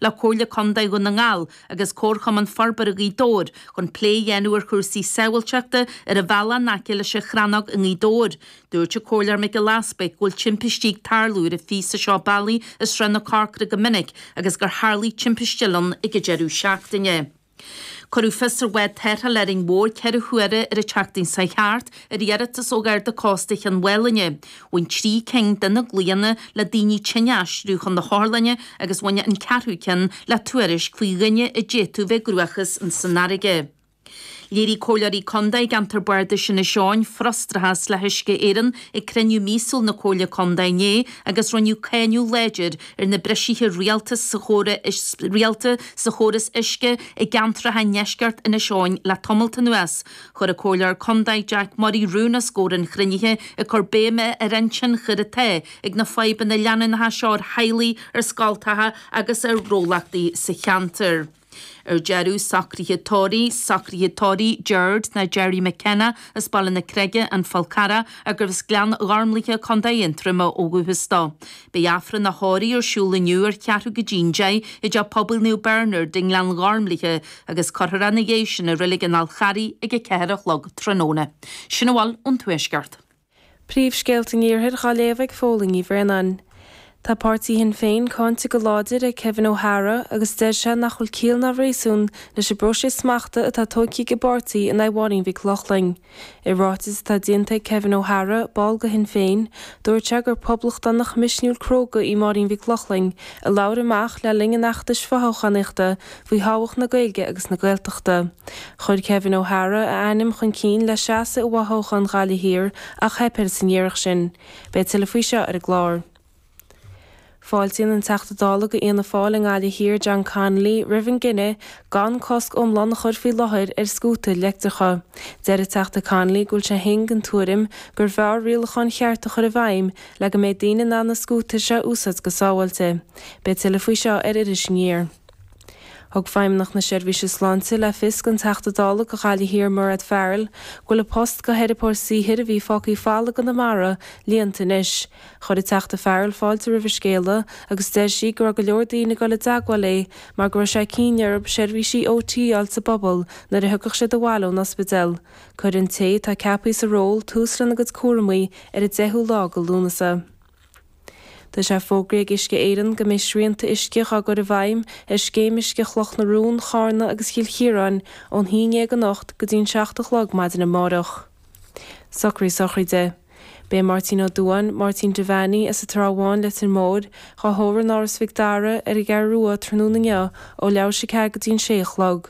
le Comhairle Contae Dhún na nGall agus Comharchumann Forbartha Ghaoth Dobhair chun plé a dhéanamh ar chúrsaí sábháilteachta ar an bhealach in aice leis an Chrannóg i nGaoth Dobhair. Dúirt an Comhairleoir Mac Giolla Easbuig go bhfuil timpistí ag tarlú ar an phíosa seo bealaigh i Srath na Corcra go minic agus gur tharlaigh timpiste eile ann ag an deireadh seachtaine. Cuireadh fios ar bhád tarrthála Árainn Mhór, ceithre huaire ar an tseachtain seo chuaigh thart, ar iarratas ó Gharda Cósta Chionn Mhálanna. Bhain trí cinn de na glaonna le daoine tinn a aistriú chun na hotharlainne agus bhain an ceathrú ceann le tuairisc faoi dhuine a d'fhéadfadh bheith i gcruachás insan fharraige. Léirigh Comhairleoirí Contae i gceantar Bardais Inis Eoghain frustrachas le hUisce Éireann ag cruinniú míosúil na Comhairle Contae inné agus rinneadh cáineadh láidir ar na bristeacha rialta rialta sa chóras uisce i gceantracha i ndeisceart Inis Eoghain le tamalt anuas. Chuir an Comhairleoir Contae Jack Murray rún os comhair an chruinnithe ag cur béime ar an tionchar atá ag na fadhbanna leanúnacha seo ar theaghlaigh, ar scoltacha agus ar ghnólachtaí sa cheantar. Ar deireadh, socruithe tórraimh, socruithe tórraimh, Gerard nó Gerry McKenna as Baile na Creige, An Fál Carrach, agus arbh as Gleann Ghormlaithe, Co Aontroma ó dhúchas dó. Beidh Aifreann a thórraimh ar siúl inniu ar cheathrú go dtí an deich i dTeach Pobail Naomh Bernard i nGleann Ghormlaithe agus cuirfear é ina dhiaidh sin i Reilig an Fháil Charraigh ag a ceathair a chlog tráthnóna. Sin a bhfuil ón Tuaisceart. Príomhscéalta an Iarthair dhá léamh ag Fódhla Ní Bhraonáin. Tá páirtí Shinn Féin cáinte go láidir ag Kevin O Hara agus deir sé nach bhfuil ciall ná réasún leis an bpróiseas smachta atá tógtha ag an bpáirtí in aghaidh Mháirín Mhic Lochlainn. I ráiteas atá déanta ag Kevin O Hara, ball de Shinn Féin, dúirt sé gur poblachtánach misniúil cróga í Máirín Mhic Lochlainn a labhair amach le linn an fheachtais fothoghchánaíochta faoi thábhacht na Gaeilge agus na Gaeltachta. Chuir Kevin O Hara a ainm chun cinn le seasamh i bhfothoghchán Ghaillimh Thiar ach theip air san iarracht sin. Beidh tuilleadh faoi seo ar an gclár. Fáiltíonn an Teachta Dála go Fhianna Fáil i nGaillimh Thiar, John Connolly, roimh an gcinneadh gan cosc iomlán a chur faoi láthair ar scútair leictreacha. Deir an Teachta Connolly go bhfuil sé fhéin den tuairim gurbh fhearr rialacháin chearta a chur i bhfeidhm le go mbeidh daoine in ann na scútair seo a úsáid go sábháilte. Beidh tuilleadh faoi seo ar Iris Aniar. Thug Feidhmeannach na Seirbhíse Sláinte le fios don Teachta Dála do Ghaillimh Thiar Mairéad Farrell go bhfuil an post do theiripeoir saothair a bhí fágtha folamh i gConamara líonta anois. Chuir an Teachta Farrell fáilte roimh an scéala agus deir sí go raibh go leor daoine ag dul i dteagmháil léi mar go raibh sé cinnte orthu seirbhísí OT a fháil sa bpobal nuair a thiocfadh siad abhaile ón ospidéal. Cuirfidh an té atá ceapaithe sa ról tús lena gcuid cúramaí ar an 10ú lá de Lúnasa. Tá sé fógraithe ag Uisce Éireann go mbeidh srianta uisce dhá gcur i bhfeidhm ar Scéim Uisce Chloch na Rón, Charna agus Chill Chiaráin ón haon déag anocht go dtí an seacht a chlog maidin amárach. Socruithe sochraide. Beidh Máirtín Ó Dubháin, Máirtín Devaney, as an Trá Bháin, Leitir Móir, dhá thórramh in Áras Mhic Dara, ar an gCeathrú Rua tráthnóna inniu ó leathuair tar éis a ceathair go dtí an sé a chlog.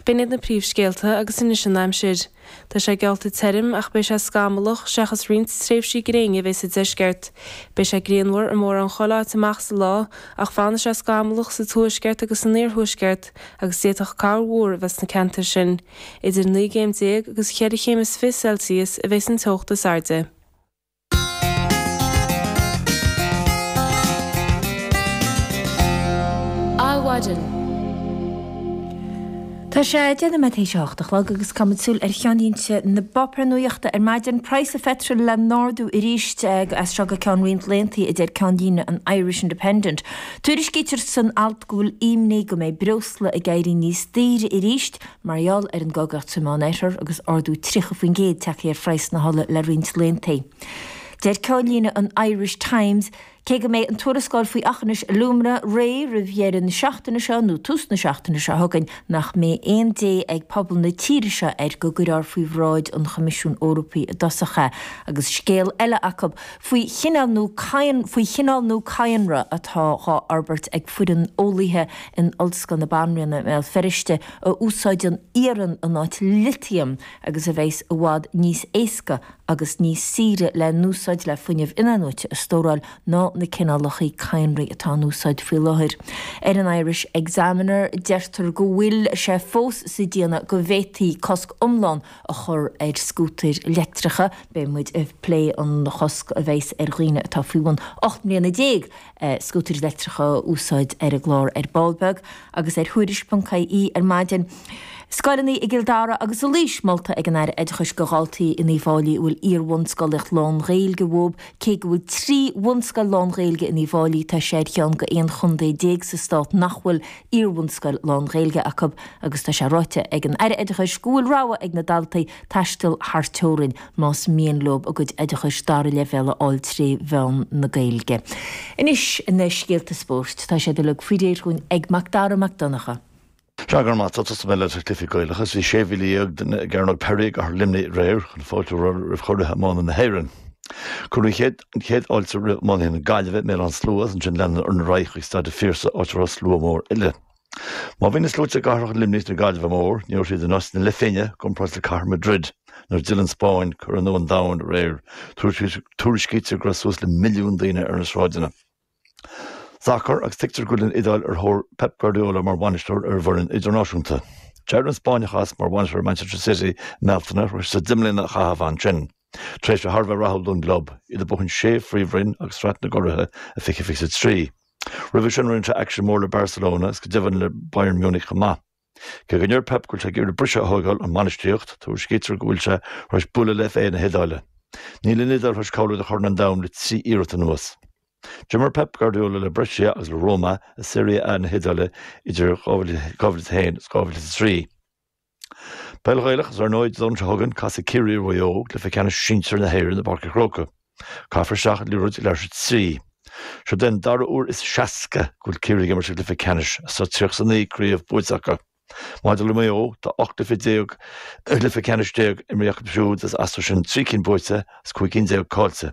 B'in iad na príomhscéalta agus anois an aimsir. Tá sé geallta tirim ach beidh sé scamallach, seachas roinnt tréimhsí gréine a bheidh sa deisceart. Beidh sé grianmhar i mórán chuile áit amach sa lá ach fanfaidh sé scamallach sa tuaisceart agus san iarthuaisceart agus d'fhéadfadh corrmhúr a bheith sna ceantair sin. Idir naoi gcéim déag agus cheithre chéim is fiche Celsius a bheas an teocht is airde. Adhmhaidin. Tá sé deich nóiméad tar éis a hocht a chlog agus caithfidh muid súil ar cheannlínte na bpáipéar nuaíochta ar maidin, praghas an pheitril le n-ardú aríst as seo go ceann roinnt laethantaí a deir ceannlíne an Irish Independent. Tuairiscítear san alt go bhfuil imní go mbeidh breosla ag éirí níos daoire aríst Mar gheall ar an gcogadh sa Meánoirthear agus ardú 30% tagtha ar phraghas na hola le roinnt laethantaí. Deir ceannlíne an Irish Times, Cé go mbeidh an tuarascáil faoi Aughinish Alumina réidh roimh dheireadh na seachtaine seo nó tús na seachtaine seo chugainn nach mbeidh aon dé ag pobal na tíre seo air go gcuirfear faoi bhráid an Choimisiúin Eorpaigh i dtosach é agus scéal eile acu faoi chineál nua cadhnra atá dhá fhorbairt ag foireann eolaithe in Ollscoil na Banríona i mBéal Feirste a úsáideann iarann in áit litiam agus a bheas i bhfad níos éasca agus níos saoire le n-úsáid le fuinneamh in-athnuaite a stóráil ná na cineálacha cadhnraí atá in úsáid faoi láthair. Ar an Irish Examiner deirtear go bhfuil sé fós sa déanamh go bhféadfaí cosc iomlán a chur ar scútair leictreacha, beidh muid ag plé an chosc a bheas ar dhaoine atá faoi bhun 18 mbliana. scútair leictreacha a úsáid ar an gclár ar ball beag agus ar Thuairisc.ie ar maidin. Scoileanna i gCill Dara agus i Laois molta ag an Aire Oideachais go dhaltaí in Uíbh Fháilí a bhfuil iarbhunscolaíocht lán-Ghaeilge uathub Cé go bhfuil trí bhunscoil lán-Ghaeilge in Uíbh Fháilí tá sé ar cheann go 11 chontae sa stát nach bhfuil iarbhunscoil lán-Ghaeilge acub agus tá sé ráite ag an Aire Oideachais go bhfuil rogha ag na daltaí taisteal thar teorainn más mian leob a gcuid oideachais dara leibhéal a fháil trí mheán na Gaeilge. Anois, na scéalta spóirt. Tá siad uilig faoi réir dhúinn ag Macdara Mac Donncha. Sea, go raibh maith agat, tosóidh mé leis na cluichí Gaelacha agus bhí sé mhíle dhéag duine i gCearnóg Pery i gCathair Luimnigh aréir chun fáilte a chur roimh churaidh iomána na hÉireann. Cuireadh an chéad fháilte roimh iománaithe na Gaillimhe i mBéal Átha na Sluaighe as ansin leanadar ar aghaidh chuig Staid an Phiarsaigh áit a raibh slua mór eile. Má bhí na sluaite i gcathracha Luimnigh is na Gaillimhe mór, ní raibh siad inchurtha le chéile i gcomparáid le cathair Madrid nuair a d'fhill an Spáinn curaidh nua an domhain aréir. Tuairiscítear go raibh suas le milliún daoine ar na sráideanna. Sacar agus tuigtear go bhfuil an Iodáil ar thóir Pep Guardiola mar bhainisteoir ar a bhfoireann idirnáisiúnta. D'éirigh an Spáinneach as mar bhainisteoir ar Manchester City i mBealtaine tar éis dó deich mbliana a chaitheamh ansin. Tréimhse thar a bheith rathúil don gclub, iad ag buachan sé Phríomhroinn agus Sraith na gCuraithe i fiche fiche is a trí. Roimhe sin rinne sé éacht an- mhór le Barcelona is go deimhin le Bayern Munich chomh maith. Cé go ndeir Pep go bhfuil sé ag iarraidh briseadh a thóigeáil ón mbainistíocht, tuairiscítear go bhfuil sé tar éis bualadh le FA na hIodáile. Níl an Iodáil tar éis cáiliú do Chorn an Domhain le trí iarracht anuas. D'imir Pep Guardiola le Brescia agus le Roma i Serie A na hIodáile idir 2001 is 2003. Peil Ghaelach is ar ndóigh Domhnach seo chugainn casfaidh Ciarraí le Maigh Eo i gcluiche ceannais sinsir na hÉireann i bPáirc an Chrócaigh. Caithfear isteach an liathróid leath tar éis a trí. Seo é an dara huair is seasca go bhfuil Ciarraí ag imirt i gcluiche ceannais is tá 39 craobh buaite acu. Maidir le Maigh Eo tá 18 gcluiche ceannais imrithe acu siúd is as sin trí cinn buaite is cúig cinn déag cáillte.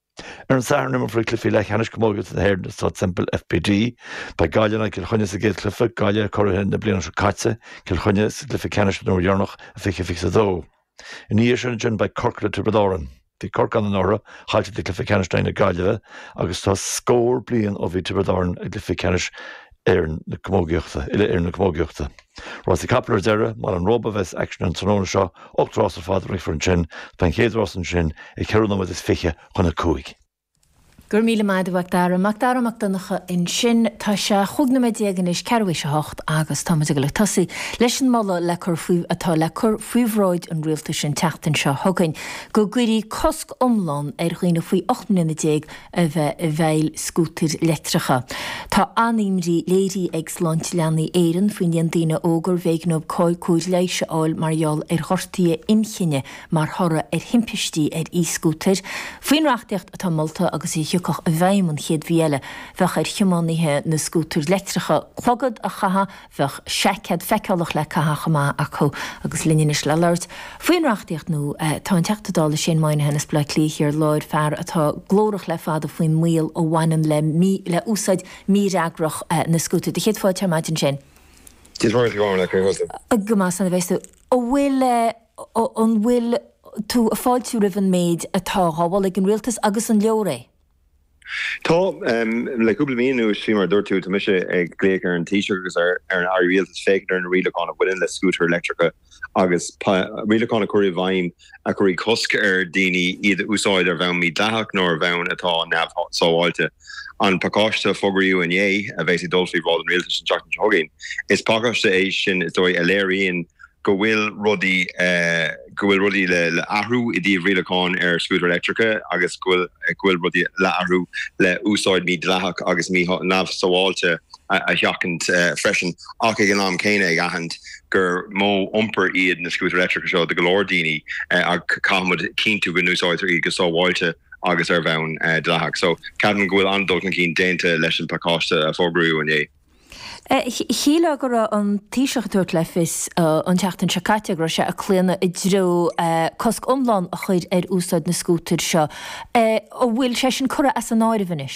Ar an Satharn imreofar cluichí leathcheannais camógaíochta na hÉireann i Staid Semple, FBD. Beidh Gaillimh in aghaidh Cill Chainnigh sa gcéad chluiche, Gaillimh, curaithe na bliana seo caite, Cill Chainnigh sa gcluiche ceannais den uair dheireanach i 2022. Ina dhiaidh sin ansin beidh Corcaigh le Tiobraid Árann. Bhí Corcaigh ann anuraidh, cailleadh an cluiche ceannais in aghaidh na Gaillimhe agus tá scór bliain ó bhí Tiobraid Árann i gcluiche ceannais na Éireann Camógaíochta, Uile-Éireann na Camógaíochta. Rásaí capall ar deireadh, i mBaile an Róba a bheas aicsean an tráthnóna seo, ocht rás ar fad a rithfear ansin, tá an chéad rás ansin ag ceithre nóiméad is fiche chun a cúig. Go raibh míle maith agat a Mhac Dara Mac Dara Mac Donncha ansin. Tá sé chúig nóiméad déag anois, tar éis a hocht agus tá muid ag dul ag tosaí leis an moladh le cur faoi, atá le cur faoi bhráid an Rialtais an tseachtain seo chugainn, go gcuirí cosc iomlán ar dhaoine faoi ocht mbliana déag a bheith i bhfeighil scútair leictreacha. Tá an-imní léirithe ag Sláinte Leanaí Éireann faoin líon daoine óg arbh éigean dóibh cóir leighis a fháil mar gheall ar ghortaithe inchinne mar thoradh ar thimpistí ar e-scútair. Faoin reachtaíocht atá molta agus a thiocfadh i bhfeidhm an chéad mhí eile, bheadh ar thiománaithe na scútar leictreacha clogad a chaitheamh, bheadh seaicéad feiceálach le caitheamh chomh maith acu agus linn anois le labhairt faoin reachtaíocht nua. Tá an Teachta Dála Shane Moynihan as Baile Átha Cliath Thiar Láir, fear atá glórach le fada faoin mbaol a bhaineann le le úsáid mífhreagrach na scútar. Sé do chéad fáilte ar maidin Shane. Dia mhaith go raibh maith, cén chaoi a bhfuil tusa? Go maith slán a bheas tú. An bhfuil an bhfuil tú ag fáiltiú roimh an méid atá á dhéanamh ag an Rialtas agus an leor é? Tá, le cúpla mí anuas, faoi mar a dúirt tú, tá mise ag glaoch ar an Taoiseach agus ar an Rialtas féachaint ar na rialacháin a bhaineann le scútair leictreacha agus rialacháin a chur i bhfeidhm a chuirfidh cosc ar dhaoine iad a úsáid ar bhonn mídhleathach nó ar bhonn atá neamhshábháilte. An pacáiste a fógraíodh inné, a bheas ag dul faoi bhráid an Rialtais an tseachtain seo chugainn, is pacáiste é sin, is dóigh, a léiríonn go bhfuil rudaí, go bhfuil rudaí le athrú i dtaobh rialacháin ar scútair leictreacha agus go bhfuil, go bhfuil rudaí le athrú le úsáid mídhleathach agus mí neamhshábháilte a sheachaint freisin ach ag an am céanna ag aithint gur modh iompair iad na scútair leictreacha seo do go leor daoine agus caithfimid cinntiú go n-úsáidtear iad go sábháilte agus ar bhonn dleathach. So ceapaim go bhfuil an-dul chun cinn déanta leis an bpacáiste a fógraíodh inné. Shíl mé go raibh an Taoiseach ag tabhairt le fios an tseachtain seo caite go raibh sé ag claonadh i dtreo cosc iomlán a chur ar úsáid na scútair seo. An bhfuil sé sin curtha as an áireamh anois?